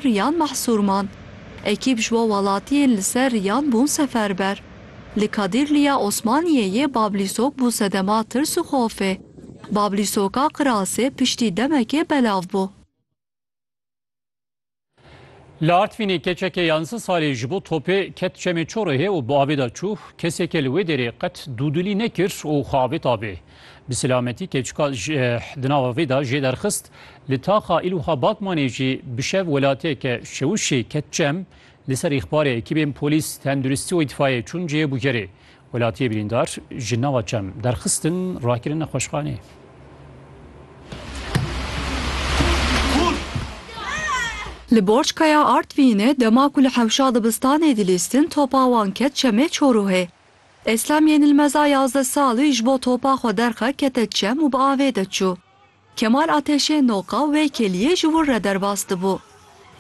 Riyan Mahsûrman, Ekîp ji bo welatiyên li ser Riyan bûn seferber. Li Kadîrliya Osmaniyê yê Bablîsok bû sedema tirs û xofê. Bablîsoka Qirasê piştî demekê belav bû. Li Artvînê keçeke yanzdeh salî ji bo topê ket çemê Çorehê û bi avê de çû. Kesekê li wê dêrê qet dûdilî nekir û xwe avêt avê. Bi selametî keçika di nava vê de jê derxist, li taxa Îlûha Batmanê jî bi şev welatiyeke şewişê ket cem, li ser îxbarê ekîbên polîs, tenduristî û îtfayê çûn cihê bûgerê. Welatiyê birîndar ji nava çem derxistin rakirin nexweşxaneyê. Li Borçkaya Artvînê dema ku li hewşa dibistanê dilîstin topa wan ket çemê Çoruhê. Eslem yên li meza yazdeh salî ji bo topa xwe derxe kete çem û bi avê de çû. Kemal Ateşê noqa wê keliyê ji wir re derbas dibû.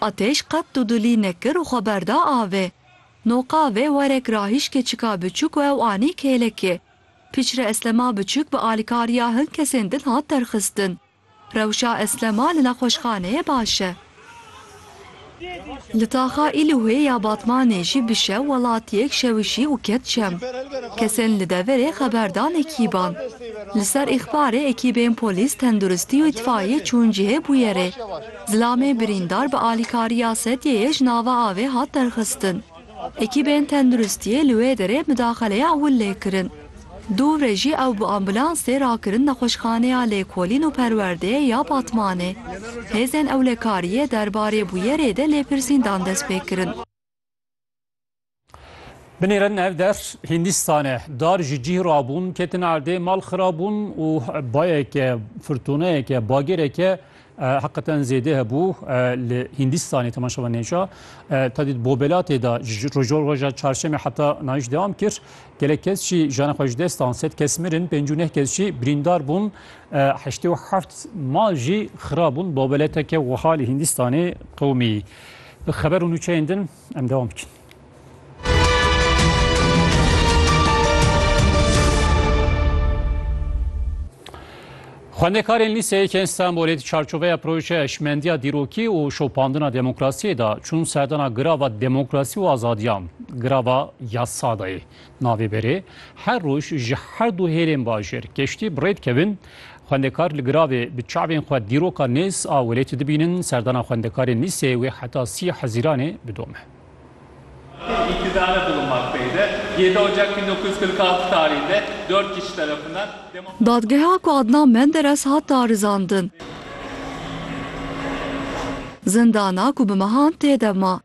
Ateş qet dudilî nekir û xwe berda avê. Noqa vê werek ra hîşkê çika biçûk û ew anî kêlekê. Pîçre Eslema biçûk bi alîkariya hin kesên din hat derxistin. Rewşa Eslema li nexweşxaneyê baş e. Li taxa Îlûhê ya Batmanê jî bi şew welatiyek şewişî û ket çem. Kesên li deverê xeber dan ekîban. Li ser îxbarê ekîbên polîs, tenduristî û îtfaiyê çûn cihê bûyerê. Zilamê birîndar bi alîkariya sedyeyê ji nava avê hat derxistin. Ekîbên tenduristiyê li wê derê midaxaleya ewil lê kirin. Dûvre jî ew bi ambulansê rakirin Nexweşxaneya Lêkolîn û Perwerdeyê ya Batmanê. Hêzên ewlekariyê derbarê bûyerê de lêpirsîndan dest pê kirin. Binêrin ev der Hindîstan e. Dar ji cîh rabûn, ketin erdê, mal xirab bûn û bayeke, firtoneyeke, bagêreke Heqeten zêde hebû li Hîndîstanê temaşe ve nêca. Tadît Bobelatê de ji roja çarşemê heta nayîş dewam kir. Gelek kes jî jana xwe ji dest dan. Sed kes mirin, pêncî û neh kes jî birîndar bûn. Heştê û heft mal jî xira bûn. Bobeleteke wiha li Hîndîstanê qewimî. Bi xeber û nûçeyên din em dewam bikin. Xwendekarên lîseyekên Stenbolê di çarçoveya projeya eşmendiya dîrokî û şopandina demokrasiyê de çûn serdana girava demokrasî û azadiyan, girava yasada ye. Navê berê, Her roj ji her du hêlên bajêr keştî bi rê dikevin. Xwendekar li giravê bi çavên xwe dîroka nêz a welêtê dibînin. Serdana xwendekarên lîseyê wê heta sî Hezîranê bidome. Dadgeha ku Adnan Menderes hat darizandin. Zindana ku bi mehan tê de ma.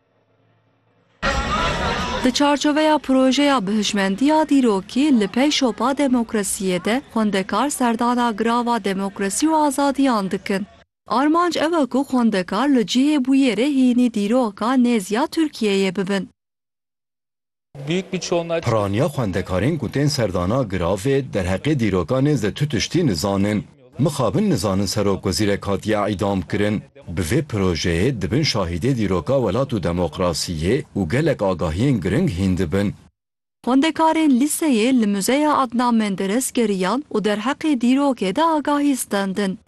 Di çarçoveya projeya bihişmendiya dîrokî li pey şopa demokrasiyê de xwendekar serdana girava demokrasî û azadiyan dikin. Armanc ew e ku xwendekar li cihê bûyerê hînî dîroka nêz ya Tirkiyeyê bibin. Piraniya xwendekarên ku tên serdana giravê derheqê dîroka nêzdî tu tiştî nizanin. Mixabin nizanin serokwezîrek hatiye îdamkirin. Bi vê projeyê dibin şahîdê dîroka welat û demokrasiyê û gelek agahiyên giring hîn dibin. Xwendekarên lîseyê li Muzeya Adnan Menderes geriyan û derheqê dîrokê de agahî standin.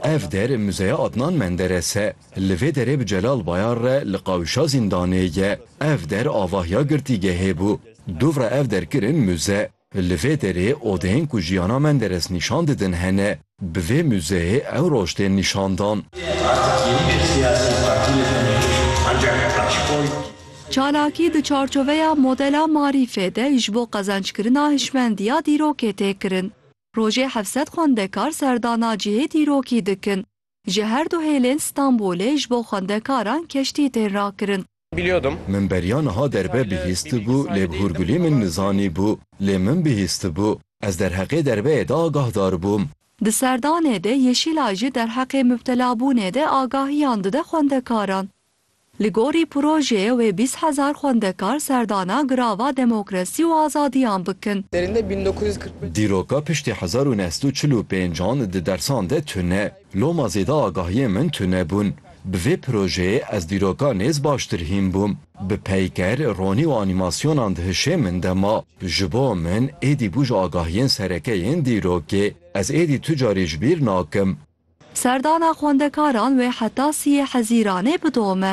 Ev der Muzeya Adnan Menderes e. Li vê derê bi Celal Bayar re li qawîşa zîndanê ye. Ev der avahiya girtîgehê bû. Dûvra ev der kirin muze. Li vê derê odeyên ku jiyana Menderes nîşan didin hene. Bi vê muzeyê ew roj tên nîşandan. Çalakî di çarçoveya modela marîfê de ji bo qezenckirina hişmendiya dîrokê tê kirin. Rojê hevsed xwendekar serdana cihê dîrokî dikin. Ji her du hêlên Stenbolê ji bo xwendekaran keştî tên rakirin. Min beriya niha derve bihîstibû lê bi hûrgulî min nizanîbû lê min bihîstibû. Ez derheqê derveyê de agahdar bûm. Di serdanê de Yeşîlay jî derheqê mubtelabûnê de agahiyan dide xwendekaran. Li gorî projeyê wê bîst hezar xwendekar serdana Girava Demokrasî û Azadiyan bikin. Dîroka piştî hezar û neh sed û çil û pênc an di dersan de tune. Loma zêde agahiyên min tune bûn. Bi vê projeyê ez dîroka nêz baştir hîn bûm. Bi peyker, ronî û anîmasyonan di hişê min de ma. Ji bo min êdî bû ji agahiyên sereke yên dîrokê. Ez êdî tu carî ji bîr nakim. Serdana xwendekaran wê heta siyê Hezîranê bidome.